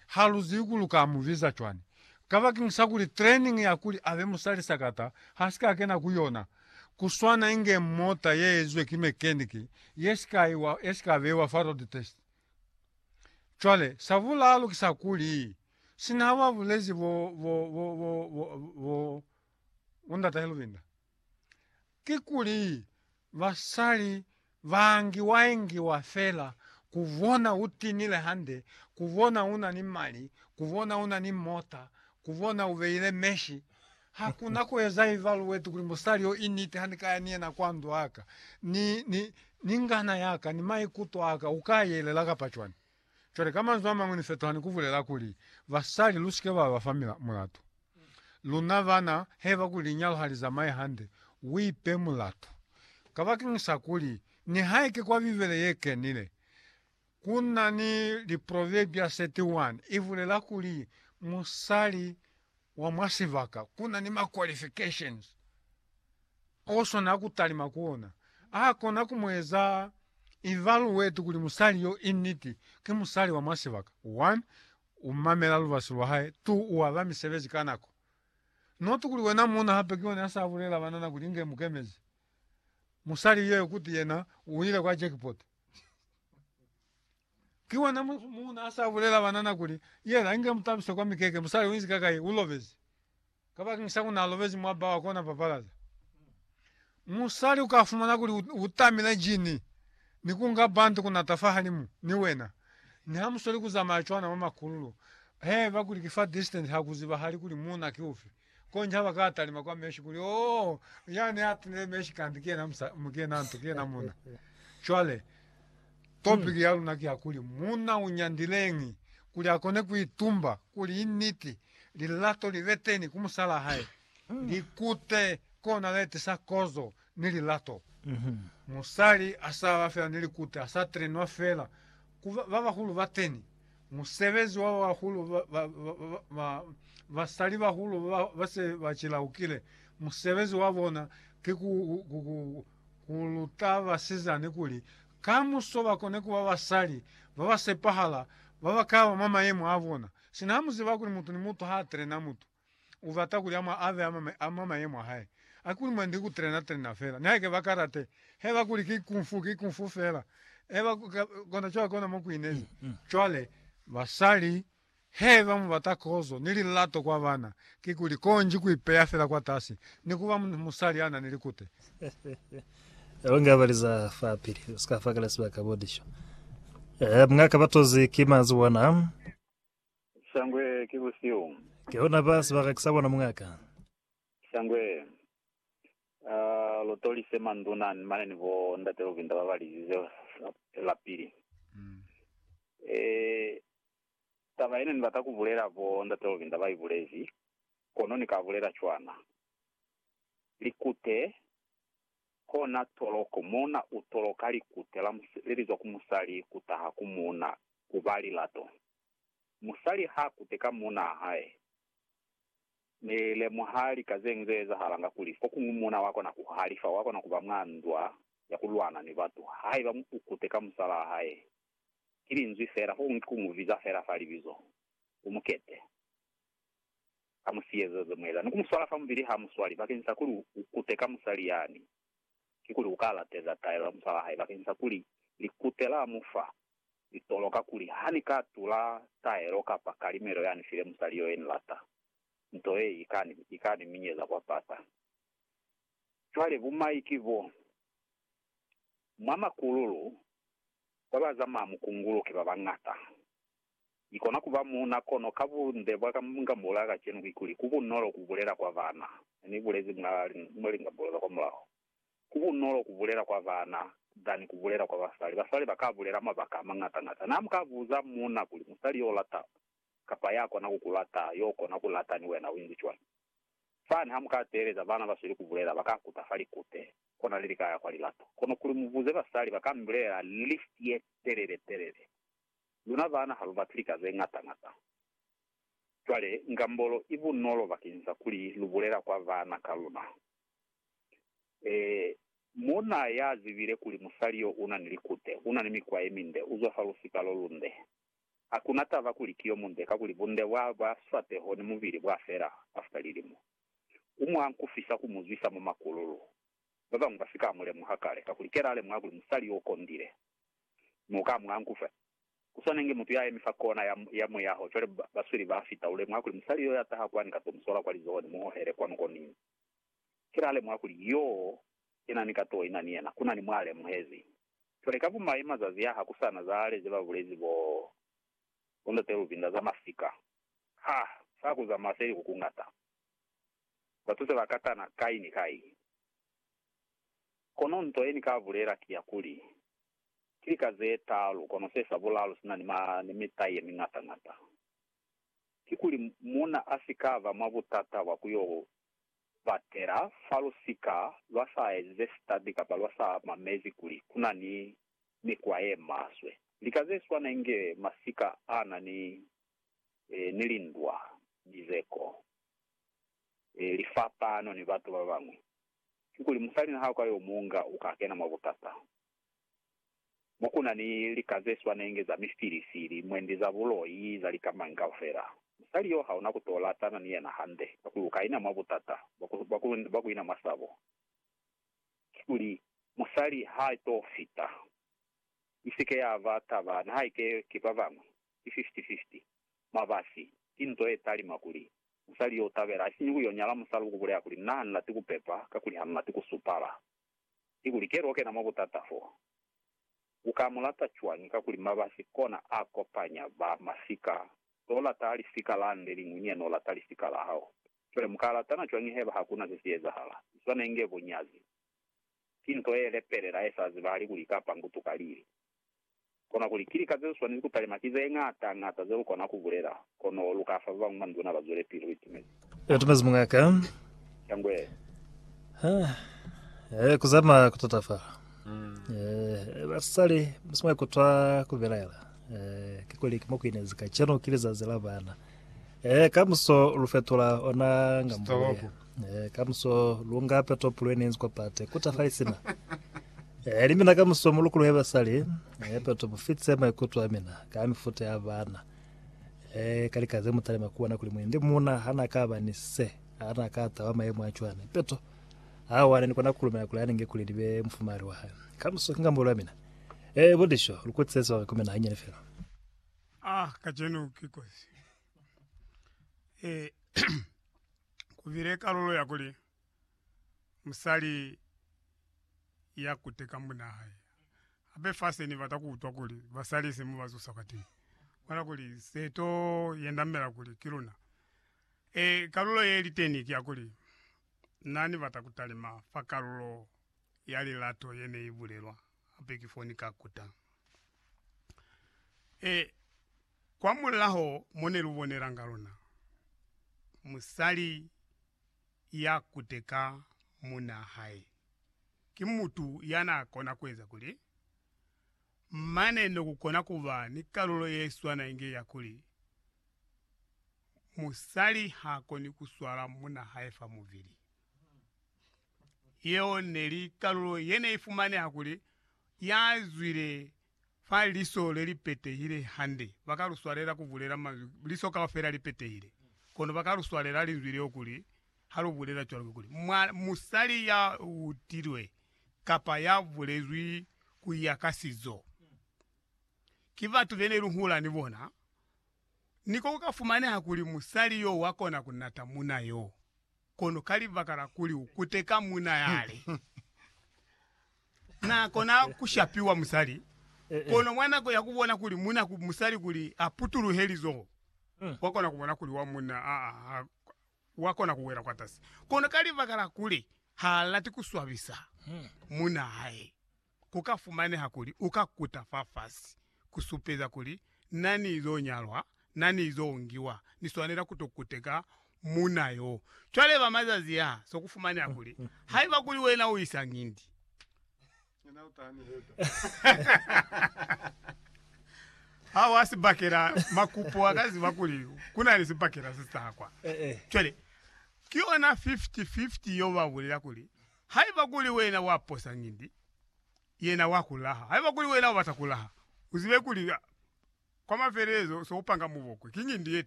Ha lu zibi kuli u ka mu biza cwani. Kabakeng sa kuli training ya kuli a be musali sakata ha si ka kena ku yona, ku swana inge mota ye ezizwe ki mechanic ye si ka iwa, ye si ka beiwa fa road test. Cwale, sa bulalu ki sa kuli, sina ha ba bulezi bo, bo, bo, bo, bo, bo, bo, bo ndata Helvinda. Kikuli basali baingiwaingiwa fela kubona utinile hande, kubona una ni mali, kubona una ni mota, kubona ubeile meshi. Hakuna kueza ivalueti kuli musali yo initi hanikaya ni yena kwa ndwaka, ni, ni, ni ngana yaka, ni maikuto aka, ukaayelela kapa cwani? Cwale, ka manzwi a mañwi, ni fetuha ni ku bulela kuli, Basali, lu si ke ba ba fa mulatu. Luna bana, haiba kuli linyalo ha li zamaye hande, u ipe mulatu. Kabakeñisa kuli, nihaike kwa Bibele ye Kenile ku na ni Liproverbia 31, i bulela kuli, Musali wa mwa sibaka ku na ni ma qualifications o swana ku talima ku ona. A kona ku mu eza evaluate kuli musali yo i niti ki musali wa mwa sibaka, one, u mamela lubasi lwa hae, two, u aba misebezi ka nako. Not kuli wena muuna hape ki ona ya sa bulela banana kuli inge mu kemezi musali yeo kuti yena u ile kwa jackpot. Ki wena mutu mu na sa bulela banana kuli, Yela, inge mu tabise kwa mikeke, musali uinzi ka kai, u lobezi. Kabakeng sa ku na lobezi mwa bawa kona papalaza. Musali u ka fumana kuli u tamile jini ni ku nga bantu ku nata fahalimu ni wena, ni ha mu sweli ku zamaya cwana mwa makululu. Hee, bakuli ki fa distance ha ku zibahali kuli muuna ki ufi. Konji ha ba ka talima kwa Meshi kuli, Oh, ya ne a tunile Meshi kanti ki yena musa, mu, ki yena nto, ki yena muna. Cwale, topiki ya luna ki ya kuli, Muna u nyandileñi kuli a kone ku itumba kuli i niti lilato li be teni ku musalaa hae, likute kona le tisa kozo ni lilato. Musali a sa ba fela ni likute, a sa trenwa fela ku ba, ba bahulu bateni. Musebezi wa ba bahulu, ba, ba, ba, ba, ba, basali bahulu ba, ba se ba cilaukile, musebezi wa bona ki ku, ku, ku, ku, ku luta basizani kuli kamuso ba kone ku ba basali ba ba sepahala, ba ba ka ba mwa mayemo a bona. Sina ha mu ziba kuli mutu ni mutu ha a trena mutu, ubata kuli ama ave ama mayemo ahae akuli mwandi ku trena trena fela nihake ba karate heba kuli ki kung fu ki kung fu fela eba kona cwale kona mo kuinezi cwale basali heba mubata kozo ni lilato kwa bana kikuli konji ku ipeya fela kwa tasi ni kuba musali ana ni likute Longe abaliza fa pili usika fa kala sibaka bodisho eh mngaka batozi ki mazi wana Shangwe ki busihu. Ke ona ba sibaka ki sa bona muñ'a ka. Shangwe, a lu tolise manduna ni mane ni bo ndate Luvinda ba ba lizize lapili. E, taba ye ne ni bata ku bulela bo ndate Luvinda ba i bulezi, kono ni ka bulela cwana. Likute, kona toloko, muuna u toloka likute la, le li zwa ku musali ku taha ku muuna, ku ba lilato. Musali ha kute ka munaa hae, ni lemuha lika zeñwi ze ezahalanga kuli fokuñwi muuna wa kona ku halifa, wa kona kuba mwa ndwa ya ku lwana ni batu. Haiba u kute ka musalaa hae, ki linzwi fela, fokuñwi ki ku mu biza fela fa libizo, u mu kete ka musiyezo ze mu eza, ni ku mu swala fa mubili ha mu swali. Bakeñisa kuli u kute ka musali yani, kikuli u ka lateza taelo ya musalaa hae bakeñisa kuli likute la mu fa Ni tolo kakuli ha ni ka tula taelo kapa kalimelo ya ni file musali yo ye ni lata, nto ye i ka ni, i ka ni minyeza kwa pata. Cwale bumai ki bo, mwa makululu, ba ba zamaya mukungulu ki ba bañata. Ni kona ku ba muuna, kono ka bunde bwa ka nga mbolela kacenu kikuli, ku bunolo ku bulela kwa bana. Ne ni bulezi mwa, mwa lingambolo za kwamulaho, Ku bunolo ku bulela kwa bana than ku bulela kwa basali. Basali ba ka bulela mabaka a mañata-ñata. Na mu ka buza muuna kuli, Musali yo u lata kapa ya kona ku ku lata yo kona ku lata ni wena u inzi cwañi? Fani ha mu ka teeleza bana ba sweli ku bulela, ba ka kuta fa likute. Kona li li ka ya kwa lilato. Kono kuli mu buze basali, ba ka mi bulelela list ye telele-telele. Luna bana ha lu bati lika ze ñata-ñata. Cwale, ngambolo i bunolo bakeñisa kuli lu bulela kwa bana ka luna. Ee, muuna ya zibile kuli musali yo u na ni likute, u na ni mikwa ye minde, u zwa fa lusika lo lunde. Ha ku na taba kuli ki yo munde kakuli bunde bwa ba swateho ni mubili bwa fela after lilimo. U mwa nkufisa ku mu zwisa mwa makululu. Ba bañwi ba si ka mu lemuha kale, kakuli ke la lemuha kuli musali yo u kondile. Mi u ka mwa nkufa. Ku swana inge mutu ya yemi fa kona ya, ya muyaho, cwale ba, basweli ba fita, u lemuha kuli musali yo ya taha kwani ka to mu sola kwa lizoho ni mu hohele kwanu ko ni, Ki la lemuha kuli yoo yena ni ka to ina ni yena, kuna ni mwa lemuhezi. Cwale ka bumaye mazazi a ha ku sana za ale ze ba bulezi bo, bo Ndate Luvinda za masika, ha sa ku zamaya seliku ku ngata. Batu se ba katana kai ni kai. Kono nto ye ni ka bulela ki ya kuli, ki lika ze taalu, kono se sa bulalu si na ni ma, ni mitai ye mingata-ngata. kikuli muuna a si ka ba mwa butata bwa ku yo batela fa lusika lwa sa enze sitabi kapa lwa sa mamezi kuli ku na ni mikwa ye maswe. Lika ze swana inge masika a na ni lindwa, mizeko, lifapano ni batu ba bañwi, kikuli musalina ha u ka yo mu nga, u ka kena mwa butata. mo ku na ni lika ze swanenge za mifilisi, limwendi za buloi, za lika mañi kaufela. Musali yo ha una ku to latana ni yena hande, ka ku lu ka ina mwa butata bwa ku, bwa ku, bwa ku ina mwa sabo. Kikuli, musali ha to fita. I si ke ya ba taba, nihaike ki ba bañwi, ki fifty-fifty. Mabasi, ki nto ye talima kuli, musali yo u tabela, isiñi ku yo nyala musali ku ku bulela kuli, Na, ni lati ku pepa, kakuli ha ni lati ku supala. kikuli keli okena mwa butata fo. Uka mulata cwañi kakuli mabasi kona a kopanya ba masika, lolata lisika la nde liñwi niye nolata lisika la hao. Cwale muka latana cwañi heba hakuna ze si ezahala? Iswanenge bunyazi. Ki nto ye lepelela ye sa zibahali kuli ika pangutuka lili. Kona kuli, Ki lika zeziswanezi kutalima ki zeñata ñata zelukona kubulela, kono luka fa babañwi manduna bazwelepili. Uitumezi? Uitumezi muñ'a ka. Shangwe. Ha. Eh, kuzama kutatafala. Eh, basali, musimwa kutwa kubelaela. Eh, ke kuli kimo kuinezi kacenu ki lizazi la bana. Eh, kamuso lufetula ona ngambo ya. Eh, kamuso lunga peto pulo ene inzi kwa pate kuta fali sina eh, limina kamuso mulukulu heba sali eh, peto bufitse maikuto amina ka mifuta ya bana eh, kalikaze mutale makuwana kuli mwende muna hana ka bani se hana ka tawa maemo a chwane peto awane nikona kulumela kuli anenge kuli libe mfumari wa hae kamuso kinga mbolo amina eh, bodisho lukutsese wa kumena hanyane fela Ah, kajeno kikosi. Eh, Ku bile kalulo ya kuli musali ya kuteka munna hae. Hape fa se ni bata ku utwa kuli basali se mu ba zusa ka teñi, bona kuli se to yendamela kuli ki luna. E, kalulo ye li teni ki ya kuli na ni bata ku talima fa kalulo ya lilato ye ne i bulelwa hape ki foni ka kuta. E, kwamulaho mo ne lu bonelanga lona, musali ya kute ka munaa hae, ki mutu ya naa kona ku eza kuli, mane no ku kona ku ba ni kalulo ye swana inge ya kuli, musali ha koni ku swala munaa hae fa mubili. Yeo neli kalulo yeneifumaneha kuli yazwile fa liso lelipetehile hande. Bakaluswalela kubulela manzwi, liso kaufela lipetehile, kono bakaluswalela linzwi leo kuli halubulela cwalo kikuli, musali ya utilwe kapa ya bulezwi kuya ka sizo. Ki batu benelihula ni bona, niko kukafumaneha kuli musali yo wakona kunata muna yo. Kono ka libaka la kuli u kuteka muuna yale, na kona ku shapiwa musali. Kono mwa nako ya ku bona kuli muuna ku musali kuli a putuluhe lizoho, wa kona ku bona kuli wa muuna a wa kona ku wela kwatasi. Kono ka libaka la kuli ha lati ku swabisa muuna hae. ku ka fumaneha kuli u ka kuta fafasi ku supeza kuli na ni zo nyalwa, na ni zo ngiwa, ni swanela ku to kuteka muuna yo. Cwale ba mazazi a so ku fumaneha kuli haiba kuli wena u isa ngindi, ha wa si bakela makupo, wa ka ziba kuli ku na ni sibakela se sa kwa. Cwale ki yona 50-50 yo ba bulela kuli Haiba kuli wena wa posa ngindi, yena wa ku laha. Haiba kuli wena u bata ku laha, u zibe kuli kwa mafelelezo se u panga mubokwe ki ngindi ye